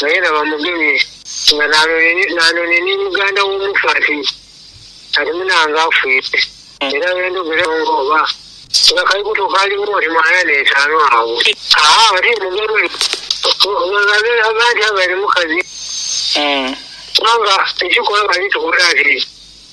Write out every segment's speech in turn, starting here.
Naye era bamugemye nga nanone ni muganda w'omufaati ali munange afwire era bendhogera gho nga oba nga kali kuto kaali mu oti mw'ana n'etaanu agho. Aa oti mugerwe ghange aba nti abaire mukazi kubanga ekikola bali tukola ati.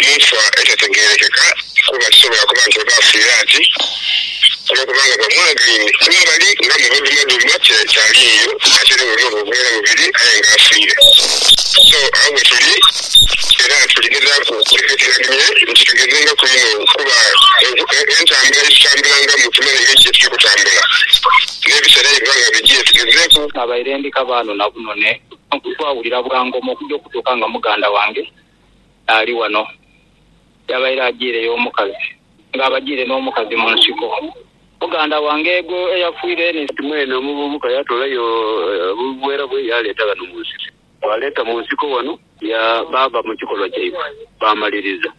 mu nfa etategeerekeka kuba kisobola kuba nti oba afiire ati olw'okuba nga bamwagaine kumbali nga mubadumaduma ti akyali eyo ate era bw'oba nga ogwera mubiri aye nga afiire. So, agho wetuli era tuli gezaaku okutekeekeranhia nti tugezengaku inho kuba entambula ye tutambulangamu tumanhe engeri ki ye tuli kutambula n'ebiseera aye biba nga bidhye. Tugezeeku. Nabaire ndi kabaano na bunone, nkukwawulira bwa ngoma okugya okutuuka nga muganda wange ali wano. Yabaire ajiireyo omukazi, nga abajiire n'omukazi mu nsiko. Muganda wange egho eyafiire ni. Kati mwene omuvubuka yatoolayo obuveera bwe yaaleeta ghano mu nsiko. Baaleeta mu nsiko wano, ya, baava mu kikolwa kyaibwe, baamaliriza.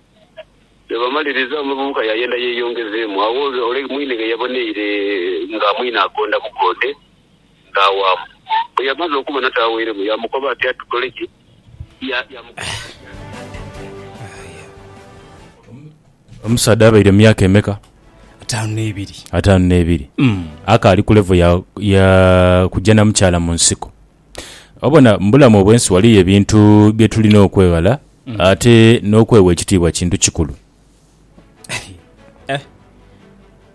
Bwe bamaliriza, omuvubuka yaayenda yeeyongezeemu. Agho ole mwine ghe yaboneire nga mwine agonda bugonde, Taawaamu. Bwe yamaze okubona taaweiremu, yaamukoba ati, Atukole ki? Omusaadha abaire mu myaka emeka? Ataanu n'ebiri. Ataanu n'ebiri. Mm. Akaali ku levo ya, ya kujja na mukyala mu nsiko. Obona, mu bulamu obw'ensi waliyo ebintu bye tulina okweghala mm. ate n'okwewa ekitiibwa kintu kikulu. eh,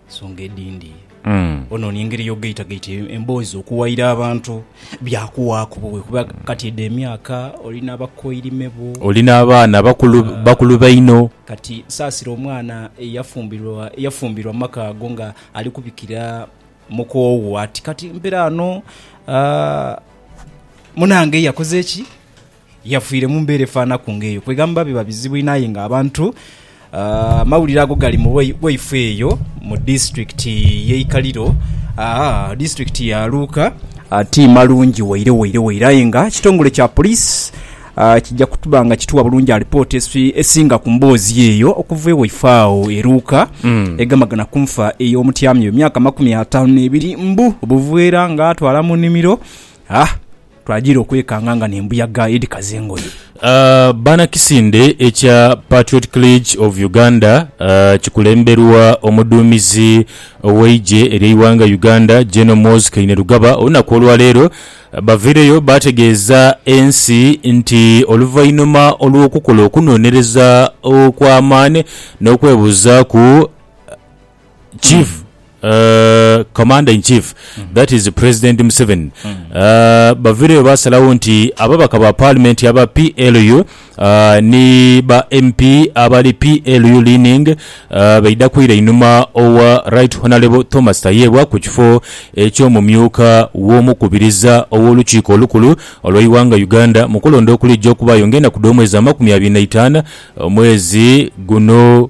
ensonga edindi mm. ononia engeri yogaitagaita emboozi okuwaira abantu byakuwaaku buwe kuba kati edo emyaka olina abakoirime bo olina abaana bakulu, ah, bakulu baino kati saasira omwana eyafumbirwa eyafumbirwa maka ago nga ali kubikira mukoowo ati kati mpera ano uh, munange yakoze ki Yafiire mu mbeera efaanaku ng'eyo. Kwegamba biba bizibu inho aye nga abantu amawulire ago gali mu bwaifo eyo mu disiturikiti y'e Ikaliro, disiturikiti ya Luuka. Ti malungi waire waire waire aye nga ekitongole kya poliisi kija kuba nga kituwa bulungi alipoota esinga ku mboozi eyo okuva e waifo agho e Luuka egamagana ku nfa ey'omutyami we myaka amakumi ataanu n'ebiri mbu buveera ng'atwala mu nnimiro. Twajiira okwekanga nga n'embuyaga edhikaza engoye. Banakisinde ekya Patriotic League of Uganda kikulemberwa omuduumizi ow'eigye ery'eighanga Uganda General Muhoozi Kainerugaba olunaku olwaleero baviireyo baategeeza ensi nti oluvainhuma olw'okukola okunonereza okw'amaani n'okwebuuzaaku Chief uh, Commander in Chief that is President Museveni uh, bavireyo baasalawo nti ababaka ba Paalimenti aba PLU uh, ni ba MP abali PLU leaning uh, baidha kwira einhuma owa Right Honourable Thomas Tayebwa ku kifo eky'omumyuka w'omukubiriza ow'olukiiko olukulu olw'eighanga Uganda mu kulonda okuliija okubaayo ng'enaku dh'omwezi amakumi abiri na itaanu omwezi guno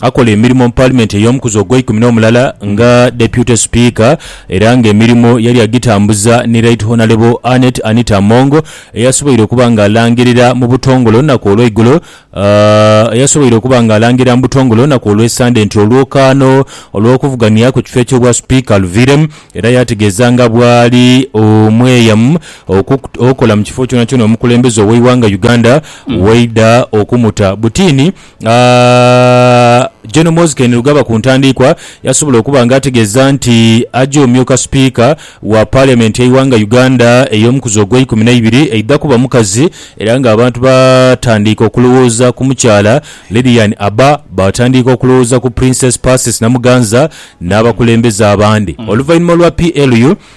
Akola emirimo mu Paalimenti ey'omukuzi ogweikumi n'omulala nga Deputy Speaker era nga emirimo yali agitambuza ni Right Honalebo Annet Anita Among eyasoboire okuba nga alangirira mu butongole olunaku olweigulo eyasoboire okuba nga alangirira mu butongole olunaku olw'esande nti olwokaano olw'okuvugania ku kifo eky'obwa Speaker luviiremu era yategeeza nga bwali omweyamu okukola mu kifo kyonakyona omukulembeze ow'eighanga Uganda waidha okumuta butiini. Gen Muhoozi Kainerugaba ku ntandiikwa yasobola okuba nga ategeeza nti aja omyuka sipiika wa Paaliamenti y'eighanga Uganda ey'omukuzi ogw'eikumi n'eibiri eidha kuba mukazi era nga abantu baatandiika okulowooza ku mukyala Lilian Abba baatandiika okulowooza ku Princess Persis Namuganza n'abakulembeze abandi oluvainhuma lwa PLU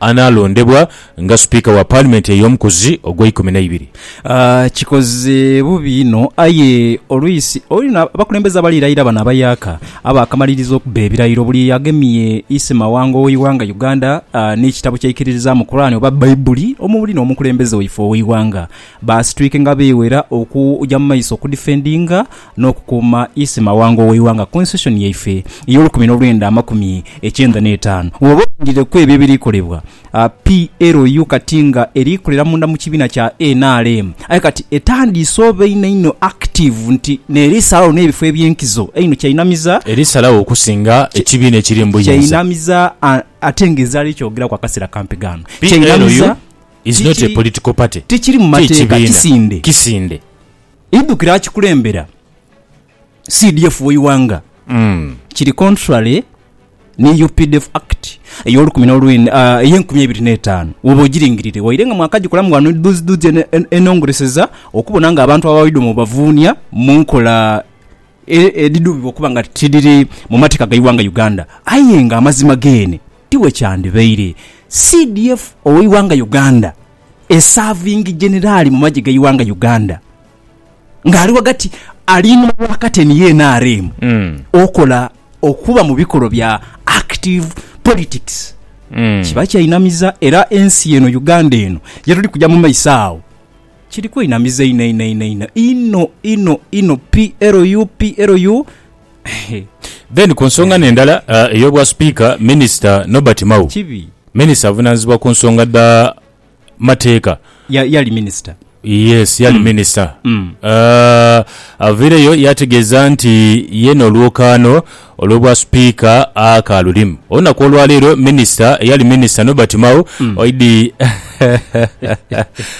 Anaalondebwa nga Sipiika wa Paalimenti ey'omukuzi ogw'eikumi n'eibiri. Kikoze bubi inho, aye olwisi olina abakulembeze abali layira bano abayaaka abaakamaliriza okubba ebirayiro buli agemye isima wango w'eighanga Uganda n'ekitabo kyeikiririzaamu Kurani oba Baibuli omubuli n'omukulembeze waife ow'eighanga baasitwike nga beewera okuja mu maiso okudifendinga n'okukuuma ise mawanga ow'eighanga Constitution yaife ey'olukumi n'olwenda amakumi ekyenda n'etaanu. Bw'oba olindireku ebyo ebiri kolebwa PLU kati nga eri kolera munda mu kibiina kya nrm aye kati etandiise oba inho inho active nti n'eri salawo n'ebifo eby'enkizo einho kyainamiza, Eri salawo okusinga ekibiina ekiri mu buyinza. Kyainamiza ate nga ezaala ekyogeraku akaseera kampi ghano. PLU Kyainamiza is not a political party. Tikiri mu mateeka. Kikibiina Kisinde. kisinde. Idhukire akikulembera CDF w'eighanga kiri contrary ni updf Act ey'olukumi n'olwenda ey'enkumi eibiri n'etaanu woba ogiringirire waire nga mwakagikolamu ghano dhuzidhuzi enongoreseza okubona nga abantu abawaidwa mubavuunia mu nkola edhidhubibwa okuba nga tidhiri mu mateeka g'eighanga Uganda aye nga amazima geene tiwekyandhibaire. CDF ow'eighanga Uganda esaavingi Jenerali mu magye g'eighanga Uganda nga ali ghagati ali inhuma wa kateni ye nrm okola okuba mu bikolwa bya active politics kiba kyainamiza era ensi eno Uganda eno yetuli kuja mu maiso agho kiri kwenamiza inho inho inho inho inho inho inho PLU PLU Then ku nsonga ne ndala ey'obwa Sipiika, Minisita Nobert Mao, Kibi. Minisita avunaanyizibwa ku nsonga dha mateeka, Ya, yali minisita. Yes, yali minisita. Avaireyo yaategeeza nti ye n'olwokaano olw'obwa Sipiika akaalulimu. Olunaku olwaleero minisita, eyali minisita Nobert Mao, oidhi.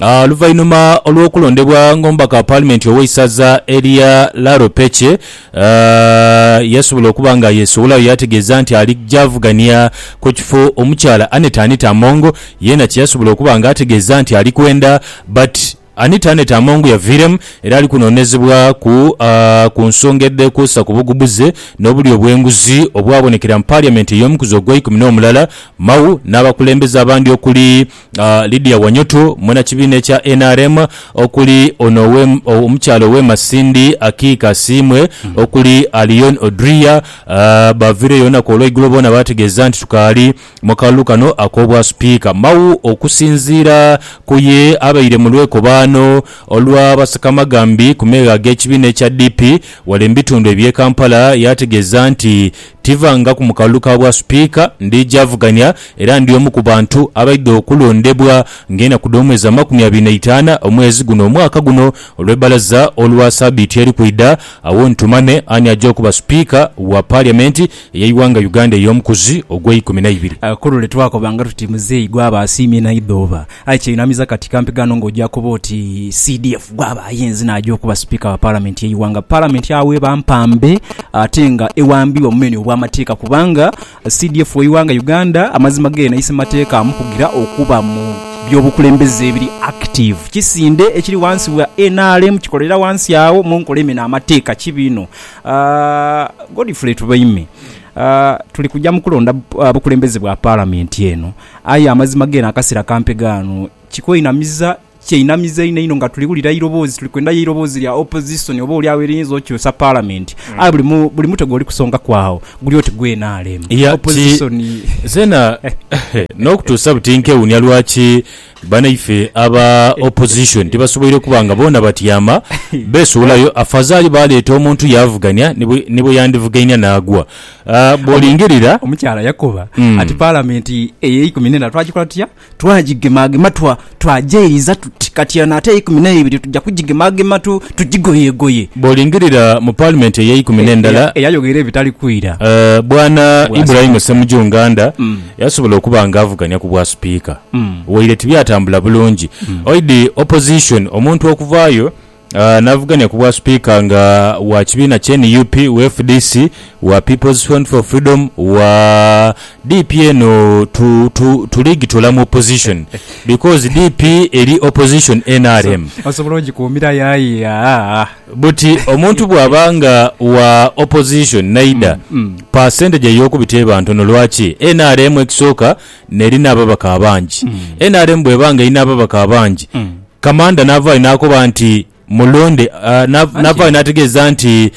Oluvainhuma olw'okulondebwa ng'omubaka wa paalimenti ow'eisaza erya Laropeche, yasobola okuba nga yeesoolayo yaategeeza nti ali gy'avugania ku kifo omukyala Annet Anita Among yeena kye yasobola okuba nga ategeeza nti ali kwenda but Anita Annet Among yaviiremu era ali kunoonezebwaku ku nsonga edheekwesa ku bugubuze n'obulya obw'enguzi obwabonekera mu Parliament ey'omukuzi ogw'eikumi n'omulala, Mao n'abakulembeze abandi okuli, Lydia Wanyutu, mwena kibiina ekya nrm okuli ono omukyala owe Masindi Akiiki Asiimwe okuli Alion Odria baaviireyo olunaku olweigulo boona baategeeza nti tukaali mu kalulu kano ak'obwa sipiika. Mao okusinziira ku ye abaire mu lwekobaano olwa basekamagambi ku meegha ag'ekibiina ekya DP wale mu bitundu eby'e Kampala yaategeeza nti Tivangaku mu kalulu ka bwa Sipiika, ndidhi avugania era ndi omu ku bantu abaidha okulondebwa ng'enaku dh'omwezi amakumi abiri n'eitaana omwezi guno omwaka guno olw'ebbalaza olwa sabiiti eri kwidha, agho ntumame ani aja okuba Sipiika wa Paliamenti ey'eighanga Uganda ey'omukuzi ogw'eikumi n'eibiri. Ku lule twakobanga tuti muzeeyi gwaba asiimye naidha oba Aye kyeinamiza kati kampi ghano nga oja kuba oti CDF gwaba ayenze naja okuba Sipiika wa Palamenti yeighanga. Palamenti agho eba mpambe ate nga ewambibwa mumeni obwamateeka kubanga CDF weighanga Uganda amazima geena ise mateeka amukugira okuba mu byobukulembeze ebiri active. Kisinde ekiri wansi wa nrm kikolera wansi agho munkola emena amateeka kibi inho. Godfrey Tubaime, tuli kuja mukulonda bukulembeze bwa Palamenti eno. Aye amazima gene akasera kampe ghano kikwenamiza, kyenamiza inho inho nga tuli wulira eiroboozi, tuli kwendayo eiroboozi lya opposition oba oli agho eriyinza okyusa parliament. Aye buli mu, buli mutwe gwoli kusongaku agho guli oti gwe nrm. Ya, ki, Opposition. nzena nokutuusa buti nkewuunia lwaki banaife aba opposition tibasoboire kuba nga boona batyama beesuulayo, afazaali baaleeta omuntu yaavugania ni bwe, ni bwe yandivugainia naagwa. Bw'olingirira. Omukyala yakoba ati, Paalamenti ey'eikumi n'ena twagikola tutya? Twagigemagema twa, twagyeiriza tuti, kati eno ate eyeikumi n'eibiri tuja kugigemagema tu, tugigoyegoye. Bw'olingirira mu Paalimenti ey'eikumi n'endala. Eyayogera ebitali kwira. Bwana Ibrahim Ssemuju Nganda yasobola okuba nga avuganya ku bwa Sipiika, waire tibyatambula bulungi. Oidhi Opposition omuntu okuvaayo. Navugania ku bwa Sipiika nga wa kibiina kye nup, wa fdc, wa People's Front for Freedom, wa DP eno tu tu tuligitola mu opposition because DP eri opposition nrm. Osobola ogikuumirayo aye aah. Buti omuntu bwaba nga wa opposition naidha, percentage eyokubita eba ntono lwaki? Nrm ekisooka nerina ababaka abangi. Nrm bweba nga erina ababaka abangi, Kamanda n'avaayo n'akoba nti, Mulonde. N'avaayo n'ategeeza nti,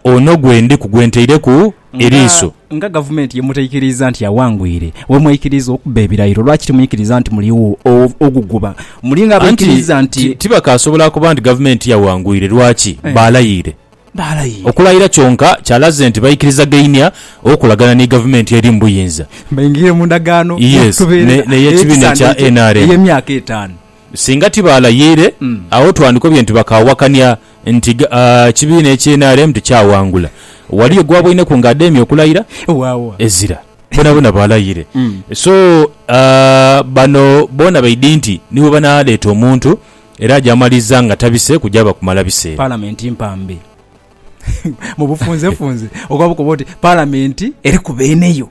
Ono gwe ndiku, gwe ntaireku eriiso. Nga Gavumenti ye mutaikiriiza nti awangwire, we mwaikiriiza okubba ebirayiro, lwaki timwikiriiza nti muli wo oguguba? Muli ng'abaikiriiza nti. Anti tibakaasobola kuba nti Gavumenti yawangwire. Lwaki? Baalayiire. baalayira. Okulayira kyonka kyalaze nti baikirizagainia okolagana ni gavumenti eri mu buyinza. Baingire mu ndagaano y'olutubeerera ey'ekisaanira ekyo ey'emyaka etaanu. Singa ti baalayiire, agho twandikobye nti bakaawakania nti ekibiina ekya nrm ti kyawangula. Waliyo gw'aboineku nga ademya okulayira? Ezira. Boonaboona baalayiire. So bano boona baidhi nti ni bwe banaaleeta omuntu era agyamaliza nga tabise kugyaba kumala biseera. Palamenti mpambe. Mu bufunzefunze oba bukoba oti Palamenti eri ku beene yo.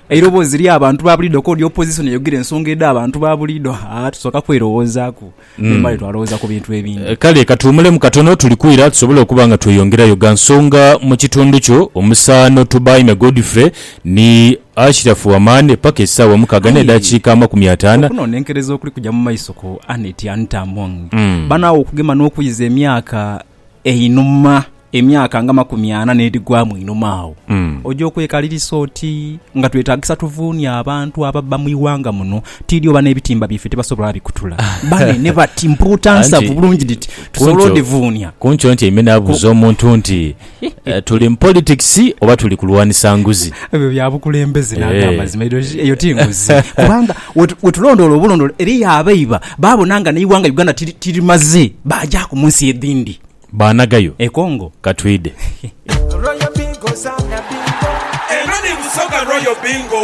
Eiroboozi ly'abantu ba buliido k'odi Opozisoni eyogera ensonga edh'abantu ba buliido, haa tusooka kwerowoozaaku memale twalowooza ku bintu ebindi. Kale katuwumulemu katono tuli kwira tusobole okuba nga tweyongerayo gha nsonga mu kitundu kyo. Omusaano Tubaime Godfrey Ni Ashiraf Wamane paka esaawa mukaaga ne dakiika amakumi ataana. Okunonenkereza okuli kuja mu maiso ku Annet Anita Among banaagho okugema n'okuiza emyaka einhuma, emyaka nga makumi ana n'edhigwamu einhuma agho, oja okwekalirisa oti nga twetagisa tuvuunye abantu ababba mu ighanga muno tiidhi oba n'ebitimba byaife tibasobola bikutula. Banene bati mpuuta nsavu bulungi dhiti tusobole odhivuunya. Ku nkyo ntyaime naabuuza omuntu nti Eh, tuli mu politics oba tuli kulwanisa nguzi? Ebyo bya bukulembeze na eh. amazima eyo ti nguzi kubanga wetulondoola obulondoola eriyo abaiba babona nga neiwanga Uganda tirimaze bajaku munsi edindi banagayo ekongo eh, katwide Royal Bingo Royal Bingo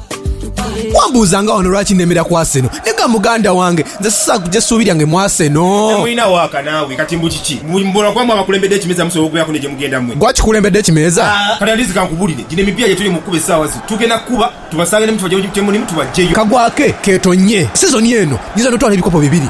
Wambuuzanga wano lwaki nemera ku Arsenal. Naye ga muganda wange, nze sisobola kuja suubi lyange mu Arsenal. Temulina waaka naawe kati mbu kiki? Mbu mbola kuba mwe abakulembedde ekimeeza musobola okubeeraku ne gye mugenda mwe. Gwe akikulembedde ekimeeza? Kati at least kankubulire, gino emipiira gye tuli mu kukuba essaawa zino tugenda kukuba tubasange ne mu kifo gye mulimu tubaggyeyo. Kagwake keetonnye sizoni eno nyinza n'otwala ebikopo bibiri.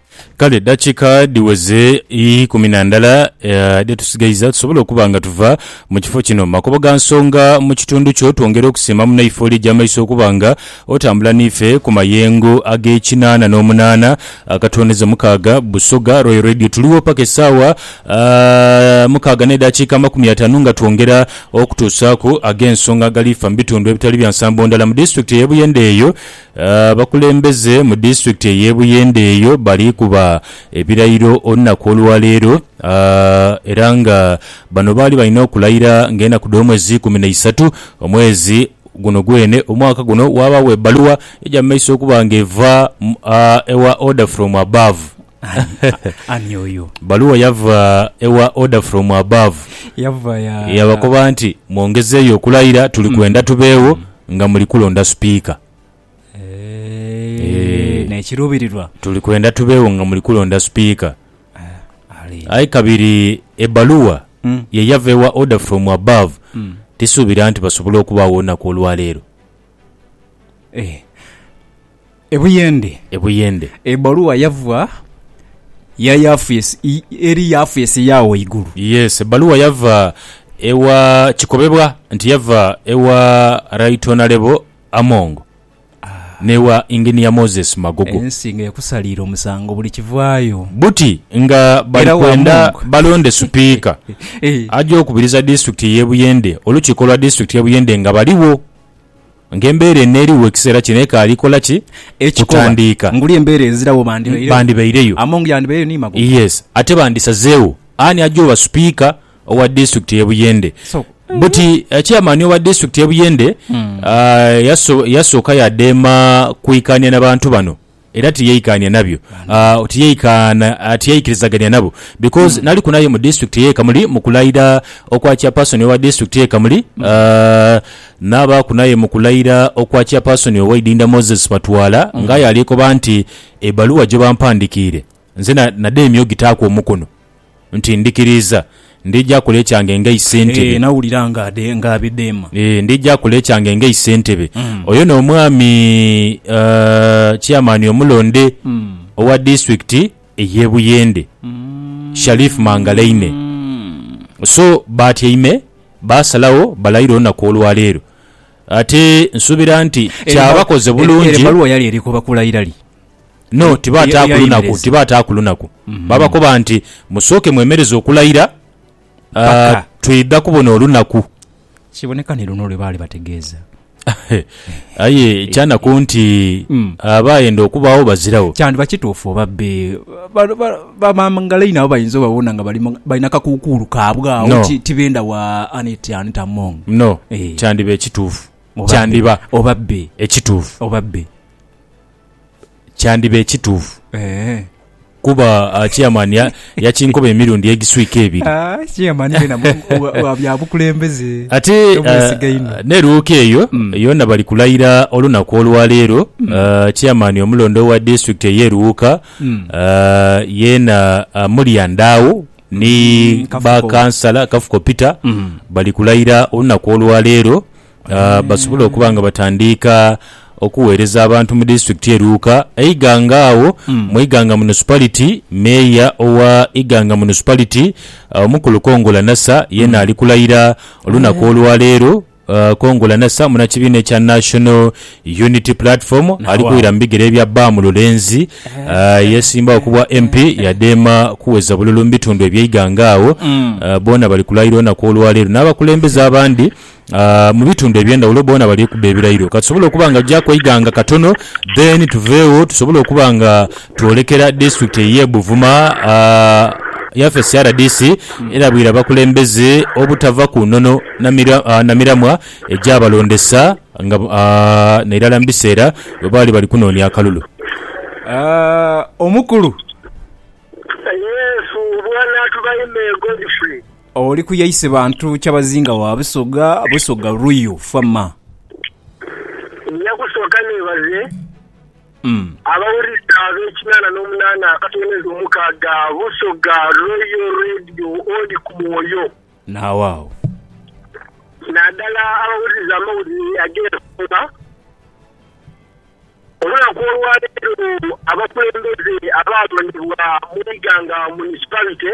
Kale dakika dhiweze ikumi na ndala dhe tusigaiza tusobole okuba nga tuva mu kifo kino. Makobo ga nsonga mu kitundu kyo, twongera okusiima munaife oli egy'amaiso okuba nga otambula n'ife ku mayengo ag'ekinaana n'omunaana akatooneza mukaaga. Busoga Royal Radio tuligho paka esaawa mukaaga n'edakiika amakumi ataanu nga twongera okutuusaaku ag'ensonga agalifa mu bitundu ebitali bya nsambo ndala mu disitulikiti ey'e Buyende eyo Abakulembeze mu disitulikiti ey'e Buyende eyo bali kuba ebirayiro olunaku olwaleero era nga bano baali balina okulayira nga enaku dh'omwezi ikumi na isatu omwezi guno gwene omwaka guno. Waabagho ebbaluwa eja mu maiso okuba nga eva ewa Order from Above. Ani oyo? Bbaluwa yava ewa Order from Above Yava ya. eyabakoba nti, Mwongezeeyo okulayira, tuli kwenda tubeewo nga muli kulonda Sipiika. Eeee, n'ekiruubirirwa. Tuli kwenda tubeewo nga muli kulonda Sipiika. Ali. Aye kabiri ebbaluwa ye yava ewa Order from Above tisuubira nti basobola okubaagho olunaku olwaleero. Eeh. E Buyende. E Buyende. Ebbaluwa yava ya Yafes, eri Yafes eya waigulu. Yes, ebbaluwa yava ewa, kikobebwa nti yava ewa Right Honourable Among n'ewa Engineer Moses Magogo. Ensi nga ekusaliire omusango buli kivaayo. Buti nga bali kwenda balonde Supiika aja okubiriza disitulikiti y'e Buyende, olukiiko lwa disitulikiti y'e Buyende nga baligho Nga embeera eno eriwo ekiseera kino ekaali kola ki? Ekikoba, Kutandiika. nguli embeera ezirawo bandibairegho. Bandibaireyo. Among yandibaireyo ni Magogo. Yes. Ate bandisazegho ani aja oba Sipiika owa Disitulikiti y'e Buyende. So. Buti Chairman owa Disitulikiti y'e Buyende yasooka yadheema kwikaania na bantu bano. Era tiyaikaania nabyo. Tiyaikaana, tiyaikirizagania nabo. Because naliku naye mu district eye Kamuli mu kulaira okwa chairperson owa district eye Kamuli, nabaaku naye mu kulaira okwa chairperson owa Idinda Moses Batwala, nga aye alikoba nti ebaluwa gyebampandikiire, Nze na, nadheemya ogitaaku omukono, nti, Ndhikiriiza. Ndhija akola ekyange nga Isentebe. Nawulira nga adhe, nga abidheema. Ee, ndhija akola ekyange nga Isentebe. Oyo n'omwami, aah, Chairman omulonde owa Disitulikiti ey'e Buyende, Sharif Mangalaine. So, baatyaime, baasalagho balayire olunaku olwaleero. Ate nsuubira nti Eyo, kyabakoze bulungi. Eyo ebbaluwa yali eri ku bakulayira li? No, Ye- tibaataaku ye- lunaku, yeyemereza. tibaataaku lunaku. Baabakoba nti, Musooke mwemereze okulayira, ah, Paka. twidha kubona olunaku. Kiboneka ni luno lwe baali bategeeza. Aye kyanaku nti Mm. abaayenda okubaagho bazirawo. Kyandiba kituufu oba be ba- ba- bamangalaine nabo bayinza obabona nga bali mu- balina kakuukuulu kaabwe awo No. ti- tibenda wa anit anit among No, Eh. kyandiba ekituufu. Oba be. Kyandiba Oba be. ekituufu. Oba be. kyandiba ekituufu Eeh. kuba ah, chairman ya- yakinkoba emirundi egiswika ebiri Ah, chairman wena mu- wa- wa bya bukulembeze. ate Tomwesiga ah, inho. n'eruuka eyo Mm. yona bali kulayira olunaku olwaleero Ah, chairman omulonde owa district ey'e Luuka Mm. ah, yeena ah, mulya ndaawo ni Mm, Kafuko. bakansala kafuko peter Mm. bali kulayira olunaku olwaleero ah, basobole okuba nga batandiika okuweereza abantu mu disitulikiti ye Luuka. Eiganga agho mu Iganga Municipality, Meeya owa Iganga Municipality, ah, Omukulu Kongola Nasa yeena ali kulayira olunaku olwaleero. Ah, Kongola Nasa munakibiina ekya National Unity Platform ali wow. kuwira mu bigere bya Bam Lulenzi ah, eyesimbawo ku bwa MP yadheema kuweza bululu mu bitundu eby'eiganga agho. Ah, boona bali kulayira olunaku olwaleero n'abakulembeze abandi mu bitundu ebyendhaghulo boona bali kubba ebirairo. Katusobole okuba nga gyaku eighanga katono then tuveegho tusobole okuba nga twolekera disitulikiti eye Buvuma yafeesi rdc erabwire abakulembeze obutava ku nono na miramwa egyabalondesa nga nairala mu biseera bwebaali bali kunoonia akalulu. Omukulu. Oli ku yaise bantu kyabazinga wa Busoga, Busoga Ruiu Fama. Nja kusooka neebaze abawulize ab'ekinana n'omunana akatonerezo omukaaga Busoga Royal Radio oli ku mwoyo. Naagho agho. Naadala abawuliriza amawulire ag'ensonga olunaku olwaleero abakulembeze abaalondebwa mu Iganga Municipality.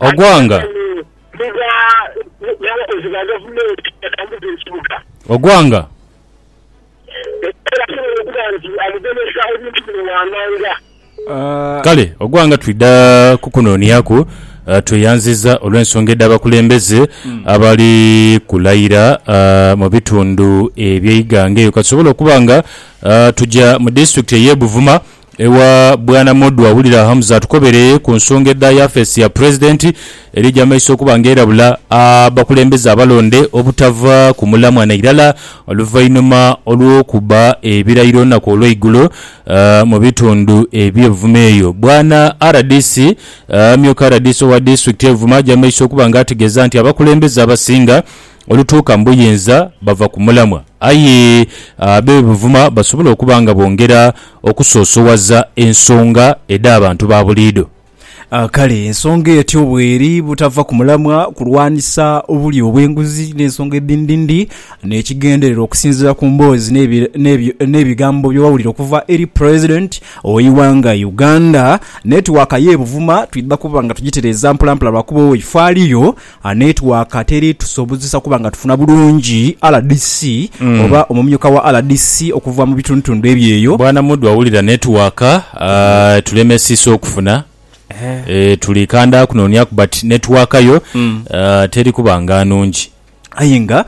Ogwanga. Ogwanga. Kale Ogwanga twidha kukunoniaku tweyanziza olw'ensonga edh'abakulembeze abali kulayira mu bitundu eby'eighanga eyo katusobole okuba nga tuja mu disitulikiti ey'e Buvuma Ewa Bwana Modwa wulira Hamza atukobere ku nsonga edha yafeesi ya Pulezidenti eri eja maiso okuba nga erabula abakulembeze abalonde obutava ku mulamwa nairala oluvainhuma olw'okuba ebirayiro olunaku olweigulo mu bitundu ebye Buvuma eyo Bwana rdc Amyuka rdc owa Disitulikiti ye Buvuma aja maiso okuba nga ategeeza nti abakulembeze abasinga olutuuka mu buyinza bava ku mulamwa. Aye abe buvuma basobola okuba nga bongera okusoosowaza ensonga edh'abantu ba buliidho. Kale ensonga etyo bw'eri butava ku mulamwa kulwanisa obulyo obw'enguzi n'ensonga edhindhindhi n'ekigendererwa okusinziira ku mboozi n'ebigambo bye wawulira okuva eri Pulezidenti w'eighanga Uganda. Netiwaaka y'e Buvuma twidha kuba nga tugitereeza mpolampola lwakuba oifo aliyo A Netiwaaka teri tusobozesa kuba nga tufuna bulungi rdc oba omumyuka wa rdc okuva mu bitundutundu ebyeyo. Bwana Mudwa wulira netiwaaka etulemesiisa okufuna e tuli kanda kunooniaku but netiwaaka yo teri kuba nga nungi. Aye nga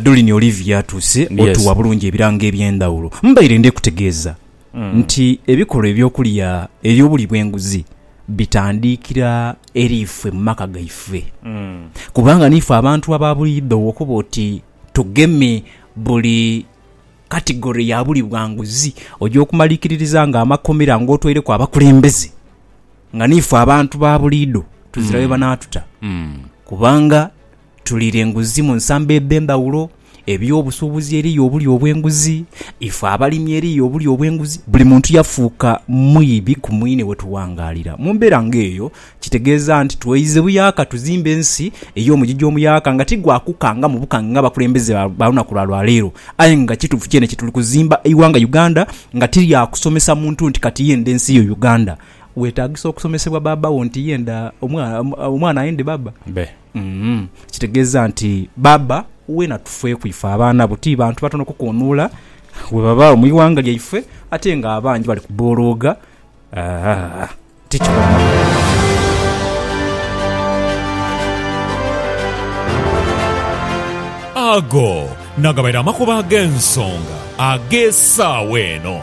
Dolini Olivia atuuse otuwa bulungi ebirango ebyendhawulo. Mbaire ndhekutegeeza. nti ebikolwa eby'okulya eby'obulyi bw'enguzi bitandiikira eri ife mu maka gaife. Kubanga niife abantu aba buliidho okuba oti tugeme buli katigore ya bulyi bwa nguzi, oja okumalikiririza ng'amakomera ng'otwaireku abakulembeze nga niife abantu ba buliidho tuzira we banaatuta kubanga Tuliira enguzi mu nsamba edh'endhaghulo, eby'obusuubuzi eriyo obulyo obw'enguzi, ife abalimi eriyo obulyo obw'enguzi. Buli muntu yafuuka mwibi ku mwine we tuwangaalira. Mu mbeera ng'eyo, kitegeeza nti tweize buyaaka tuzimbe ensi ey'omugigi omuyaaka nga ti gwa kukangamu bukange ng'abakulembeze ba lunaku lwa lwa leero. Aye nga kituufu kyene nti tuli kuzimba eighanga Uganda nga ti lya kusomesa muntu nti kati yendha ensi yo Uganda. Weetaagisa okusomesebwa baaba wo nti ye ndha omwana ayendhe baaba be. Kitegeeza nti baaba we na tufeeku ife abaana bo. Ti bantu batono kukoonuula we babaagho mu ighanga lyaife ate nga abangi bali kubolooga. Ti kikoonaku. Ago nagabaire amakubo ag'ensonga ag'esaawa eno.